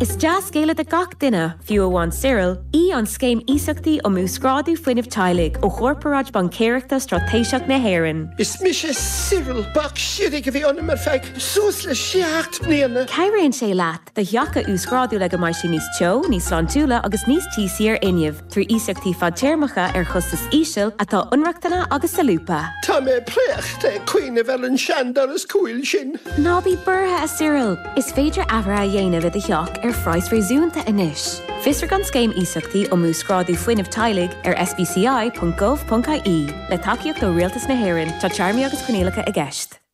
Is dea-scéala do gach duine, fiú amháin Cyril, í an Scéim Iasachtaí um Uasghrádú Fuinnimh Teaghlaigh ó Chorparáid Baincéireachta Straitéiseach na hÉireann. Is mise Cyril. Bac siorraidh a bhí ionam ar feadh suas le seacht mbliana. Cabhraíonn sé leat do theach a uasghrádú le go mbeidh sé níos teo, níos sláintiúla agus níos tíosaí ar fhuinneamh. trí iasachtaí fadtéarmacha ar chostas íseal atá inrochtana agus solúbtha. Tá mé préachta ag cuimhneamh ar an seandoras cúil sin. Ná bí buartha, a Cyril! Is féidir athruithe a dhéanamh i do theach ar phraghas réasúnta anois. Fiosraigh an Scéim Iasachtaí um Uasghrádú Fuinnimh Teaghlaigh ar sbci.gov.ie. Le tacaíocht ó Rialtas na hÉireann, tá téarmaí agus coinníollacha i gceist.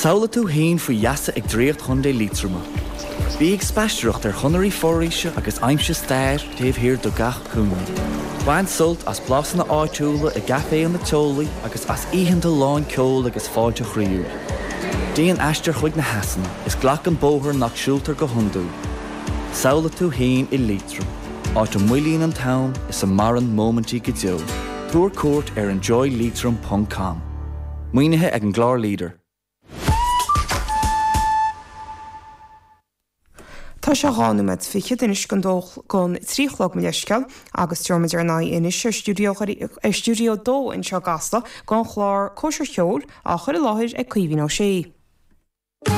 Samhlaigh tú fhéin faoi gheasa ag draíocht Chontae Liatroma. Bí ag spaistearacht ar chonairí foraoise agus aimsigh stair taobh thiar de gach cúinne. Bain sult as blasanna áitiúla i gcaiféanna teolaí agus as oícheanta lán ceoil agus fáilte chroíúil. Déan aistear chuig na heasanna is glac an bóthar nach siúltar go hiondúil. Samhlaigh tú fhéin i Liatroim, áit a moillíonn an t-am is a maireann móimintí go deo. Tabhair cuairt ar enjoyleitrim.com. Maoinithe ag an gclár Leader. Tá sé dhá nóiméad fichead anois gon dó gon trí a chlog mo leithscéal agus tabharfaidh muid ár n-aghaidh anois ar stiúideo dheirí ar stiúideo a dó anseo i gCasla gon chlár Cóisir Cheoil á chur i láthair ag Caoimhín Ó Sé.